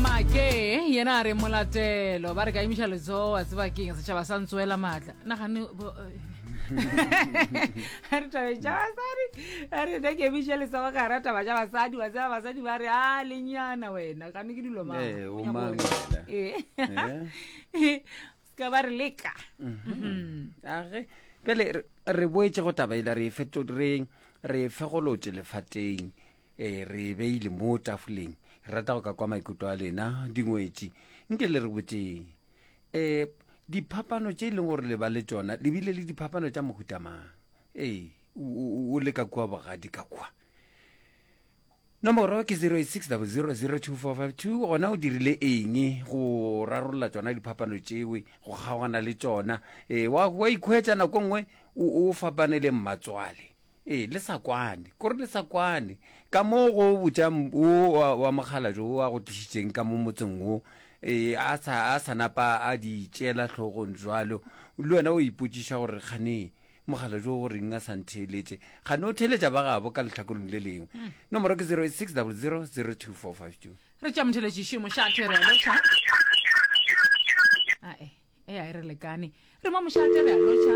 make yena a re molatelo ba re ka imiša letsogo a tseba keng setšhaba sa ntsoela maatla nagane a re tabe ja basadi a re ne ke emiše letsogo ka ra taba ja basadi wa tseba basadi ba re a lenyana wena gane ke dilo Eh, o mang wena? Eh. Eh? ka ba re leka Mhm. age pele re- re boetse go taba ele re e feto- re- re e fegolotše lefateng ee re e beile mo tafoleng re rata go ka kwa maikutlo a lena dingwetši nke le re botseng um diphapano tše e leng gore le ba le tsona le bile le diphapano tša mohutamang ee o le ka kua bogadi ka kua nomoro ke 06000245 gona o dirile eng go rarolola tsona diphapano tšewe go kgaogana le tsona um wa ikhwetsa nako nngwe o fapane le mmatswale Ee, le sa kwane. Kore le sa kwane. Ka mo go botša wo wa, wa mokgalabje wo a go tlišitšeng ka mo motseng wo, ee, a sa, a sa napa a di tšeela hlogong bjalo, le wena o ipotšiša gore kgane mokgalabje wo o reng a sa ntheeletše. Kgane o theeletša ba gabo ka lehlakoreng le lengwe. Nomoro ke 0860002452. Re tšea motheeletši šemo ša tere a lotšha. Ae, e a e re lekane. Re mo mošate re a lotšha.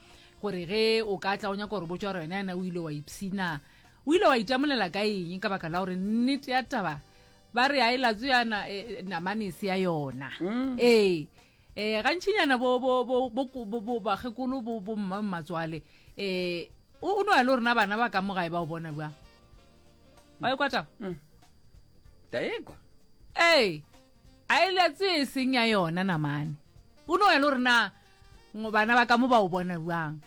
gore ge o ka tla o nyaka gore botsa gore wena yana o ile wa ipshina o ile wa itamolela ka eng ka baka la gore nnete ya taba ba re a e latso yana e, e, namane e se ya yona mm. ee um gantšhinyana bakgekolo bomma mmatswale um o no ya le gorena bana ba ka mogae ba o bona bjang ba e kwatao mm. ee A e le tse e seng ya yona namane. O no ya le gore na bana ba ka mo ba o bona bjang.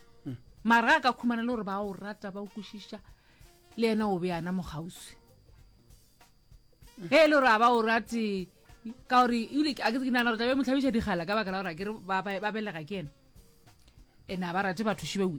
Mara a ka khumana le gore ba o rata ba o kwešiša le yena o be yana mogauswi. Ge e le gore a ba o rate ka gore ebile a ke nagana gore tlabe mo tlhabiša dikgala ka baka la gore a ke re ba belega ke yena. Ene a ba rate batho šibewe.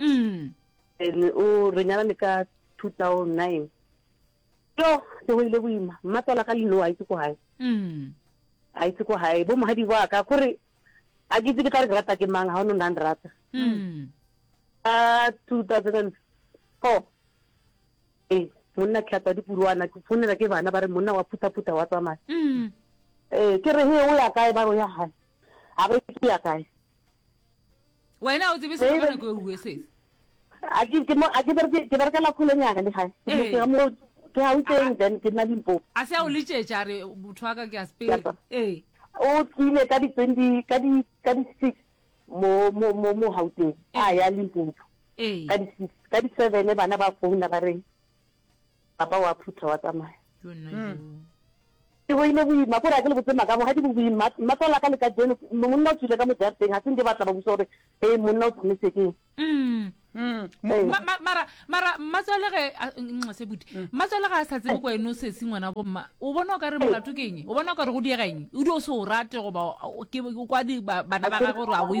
Umm. And o re nyalane ka 2009. Yo, ke go ile boima. Mmatswala ka lino a itse ko hae. Umm. A itse ko hae. Bo mohadi wa ka gore a ke itse ke tla re rata ke mang ha o no nang rata. Umm. Ka 2004. Eh, monna tlhatsa dipuruana ke fonela ke bana ba re monna wa phuta phuta wa tsamaya. Umm. Eh, ke re he o ya kae ba re o ya hae. Ha ba itse ya kae. wena o tsebe se ka nako e uwe se a ke ke mo a ke berke ke berke la khole nyana le gae ke eh. mo ke ha utseng then ke na limpo a se a o letšetša re motho wa ka ke a spele ee o tlile ka di twenty ka di ka di six mo mo mo mo hauteng a eh. ya limpo ka di six ka di seven bana ba founa ba reng Papa wa phutha wa tsamaya. Ke boile boima, ko re a ke le botse maka, bogadi bo boima. Mmatswale a ka le ka jeno, monna o tswile ka mo jarateng, ga se nke ba tla ba busa gore e monna o tsamaise keng. Mara, mara, mmatswale ge, nxese buti, mmatswale ga a sa tsebe ko ene o sesi ngwana bo mma, o bona o ka re molato ke eng? O bona o ka re go diega eng? O di o se o rate goba o kwa bana ba gage gore a o e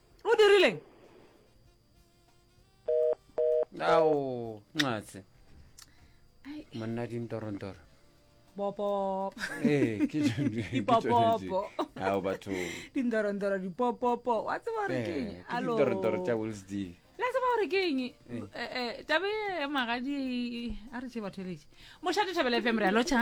o dirileng ao nxatse monna dintorondoro bopopo ee ke tšone- ke Dipopopo. tšone tše. ao batho dindorondoro dipopopo wa tseba gore ke eng? Eh, ke Alo. ditorotoro tša wills d la tseba gore ke eng Eh, eh, tabe ya magadi a re tše batho eletše mošate thabela fm re a lotšha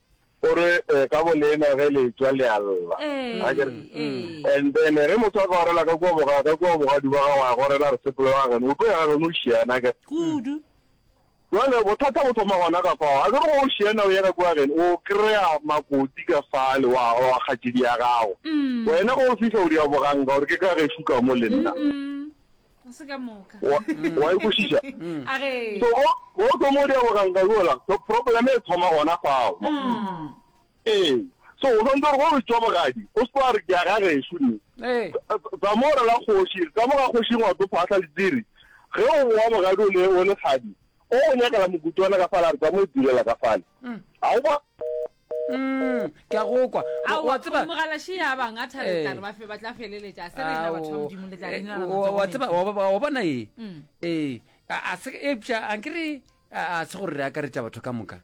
O re, eh, ka bolena ge le tšwa le a lla. Ee, A ke re? ee. And then ge motho a ka gorela ka kua boga, ka kua bogadi ba gago a gorela a re sepele wa geno, o tlo ya geno o šiana, a ke re? Kudu. Jwale bothata bo thoma gona ka fao. A ke re go o šiana o ye ka kua geno, o kry-a makoti ka fale wa, wa kgatšedi ya gago. Wena ge o fihla o di a boganka gore ke ka gešo ka mo le nna. Mm-mm. O se ka moka. Wa, wa e kwešiša? A ge. So, go, go tlo mo dia boganka yola, so problem e thoma gona fao. Ee. So, o swantse gore go re tšwa bogadi, o se tlo a re ke a ga gešu ne. Ee. Tsa- Tsa mo re la kgoši, tsa mo ga kgoši ngwa tlo phahla le diri. Ge o boa bogadi o le, o le kgadi, O go nyakela mokutswana ka fale a re tsa mo itulela ka fale. A o ba. Mm, ke a go kwa. A wa tseba mogalashi ya bang a thabela eh. re ba fe ba tla feleletša se re na batho ba modimo le tla eh, dina matsogo. Wa tseba wa bona e. Mm. Eh, a se e pja a nkere a se gore re akaretša batho ka moka.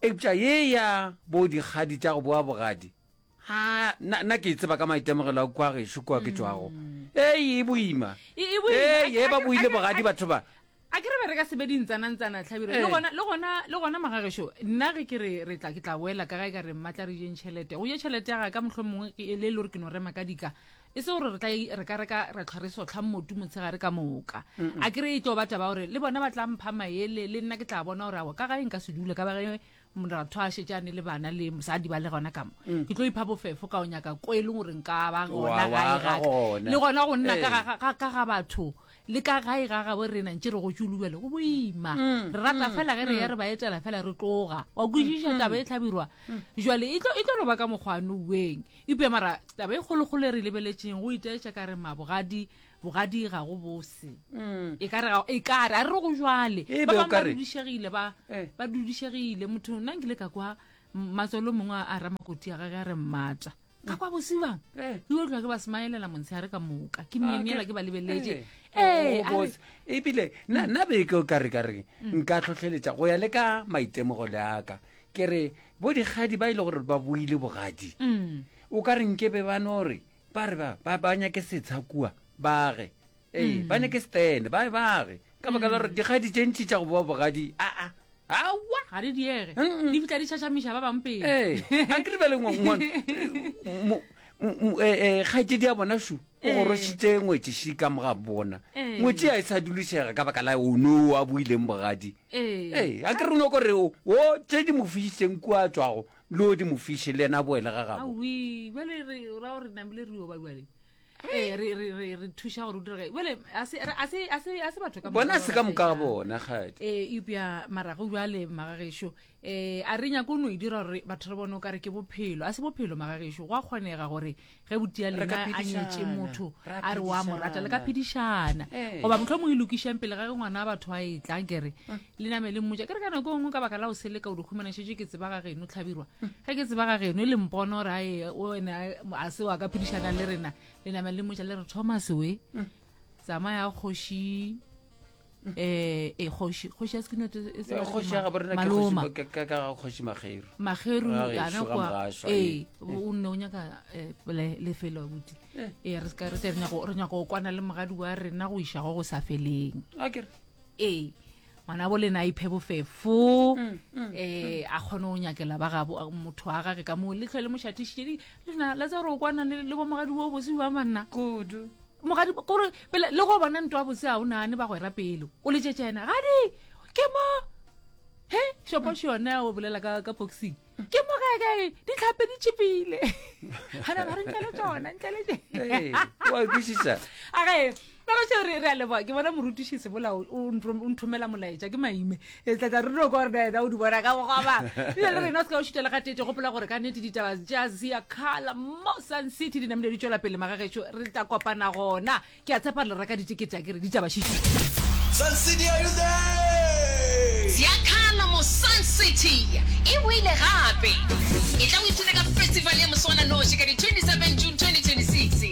E pja ye ya bo digadi tša go boa bogadi. a na na ke tseba ka maitemogelo a kwa gešo kwa ke tswago ei e boima E- e boima. A- ei e ba a- boile a- bogadi a- batho ba a ke re be re ka sebe dintsanantsana tlhabiro le Eh. gona le gona le gona magagešo nna ge ke re re tla ke tla boela ka ga e ka re mmatla re jeng tšhelete go je tšhelete ya ga ka motlho mongwe ke e le e le gore ke no rema ka dika e se gore re tla e- re ka re ka ra tlhwa re sotlhang motu motshegare ka moka a ke re e tlo ba taba gore le bona ba tla mpha maele le nna ke tla bona gore ao ka ga e nka se dule ka ba ge moratho a šetše a ne le bana le mosadi ba le gona kamo mm. ke tlo ipha bofefo ka o nyaka ko e leng gore nka ba gona gae gaka le gona go nna ka ga batho le ka gae ga gabo re nang tše re go tšolubele go boima mm. re rata mm. fela ge re ya re ba etela fela re tloga wa kwešiša taba e tlhabirwa jale e tlo e lo ba ka mokgwano ueng ipea mara taba e kgolokgolo e re lebeletseng go itaetša ka re mabogadi bogadi ga go bose mm. e kare e a re go jwale ba bangwe ba dudišegile ba eh. ba dudišegile motho nna nkile ka kwa matswalo mongwe a ra makoti ya gage a re mmata ka kwa bosibang eh. e otlwa ke ba smaelela montshe a re ka moka ke memiela ah, ke ba lebeletse eh. oh, ebile mm. nna beke o kare kare mm. nka tlhotlheletsa go ya le ka maitemogo le aka ke re bo dikgadi ba e le gore ba buile bogadi o ka re nkebe ba no re ba re ba ba ba nyake setsha kua bage ee ba nyake stene ba bage ka baka la gore dikgadi tše ntši tša go boa bogadi aa awa ga di diege Mm-mm. di fitlha di šašamiša ba bang pele ee a ke lebele kgaitse di a bona su o Ee. gorošitše ngwetšeši ka moga bona Ee. ngwetši ya e sa dulišega ka baka la ono a buileng bogadi ee ee a ke re no kore o o tše di mo fišitseng kua tswago Leo di mo fiše, le yena a boele ga gabo. Awi, bjale re ra gore namile re oba bjale. Eh, re re re re thuša gore o dira gae. Bjale a se a se a se a se batho ka Bona se ka moka ga bona kgadi. Eh, eupša marago bjale magagešo. Eh, a re nyako no e dira gore batho re bone o kare ke bophelo. A se bophelo magagešo. Go a kgonega gore ge botia lena a nyetše motho a re wa mo rata le ka phedišana eh. goba motlho mongwe e lokišang pele ga ge ngwana wa batho a e tlang kere eh. le name le mmotsa ke re ka nako e nngwe ka baka la o sele ka o dikgomanešetše ke tseba ga geno tlhabirwa eh. ge ke tseba ga geno e le mpono gore ae one a se wa ka phedišana le rena le name le mmotsa le re thomas we tsamaya kgoši eh e kgoši kgoši ya sekinote e se kgoši ya gaborena ke kgoši ka ka ga kgoši mageru mageru ana kwa eh o nne o nyaka eh, le le felo buti eh. eh re ska re tle re nyako re nyako kwana le mogadi wa rena go isha go go sa feleng akere eh ngwana bo lena iphe bofefo mm, mm, eh mm. a khone o nyakela ba ga motho wa gage ka mo le tlhole mo shatishe le na la tsa re o kwana le bo mogadi wo bosiwa manna kudu Mogadi, kore pele le go bona nto a bose a o nane ba go era pelo. O le tšetša ena. Gadi, ke mo. He, shopoši yone ya o bolela ka, ka boxing. Ke mo gae gae, di tlhape di tšipile. Hana ba re ntle le tšona, ntle le tše. Hey, wa kwisisa. A ge, ba go tšeo re, re a leboa. Ke bona morutiši Sebola o, o nthomela molaetša, ke maime. e tlatsa re no kore daeda o di bona ka bogoba bile le rena o se ka o šutela ga tete gopola gore ka nete ditaba ja zia kgala mo sun city di namile di tšwela pele magagetšo re tla kopana gona ke a tshepa le reka ditekete a ke re ditaba šitu Sun City, are you there? Ziakhala mo Sun City e boile gape. E tla o ithuta ka festival ya mosogananoši ka di 27 June 2026.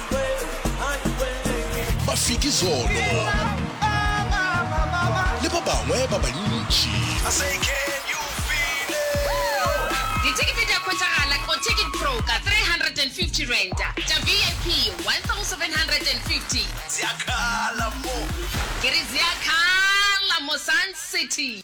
Mafiki Zolo le ba bangwe ba bantši. Dithekete di a hwetšagala ko Ticket Pro ka R350, tša VIP R1,750. Ke re di a khala mo Sun City.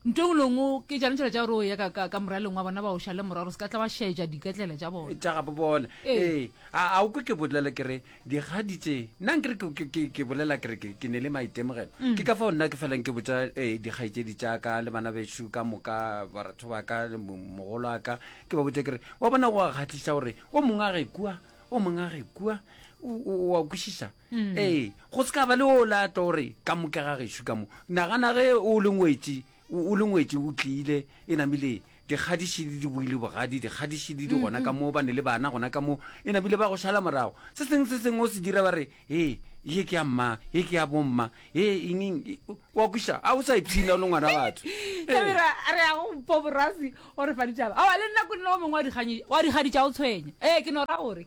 Ntho engwe le engwe ke tšane tšhelete ya gore o ye ka, ka, ka moraleng wa bona ba o šale moraro, se ka tla ba šaetša diketlela tša bona. Tša gabo bona. Ee. Ee. A, a o kwe ke bolela ke re, dikgadi tše, nna nkere ke, ke, ke, ke bolela ke re ke, ke ne le maitemogelo. Ke ka fao nna ke felang ke botša e, dikgaetšedi tša ka le bana bešo ka moka, baratho ba ka, le mo, mogolo wa ka, ke ba botša ke re, Wa bona go a kgahliša gore o mongwe a ge kua, o mongwe a ge kua. O, o, o a kwešiša? ee go se ka ba le o la tlo gore ka moka ga gešo ka mo nagana ge o le ngwetši o o le ngwetši o tlile e namile dikgadiši le dibuile bogadi dikgadiši le di gona ka moo ba ne le bana gona ka moo e namile ba go šala morago se sengwe se sengwe o se dira ba re ee ye ke ya mma ye ke ya bomma ye engeng e- o- wa kwiša a o sa ipshina o le ngwana batho Ee. kamera a re yago mpo borasi o re fa ditaba aa le nna ko nna o mongwe wa dikganyi- wa dikgadi tša o tshwenya ee ke no ra gore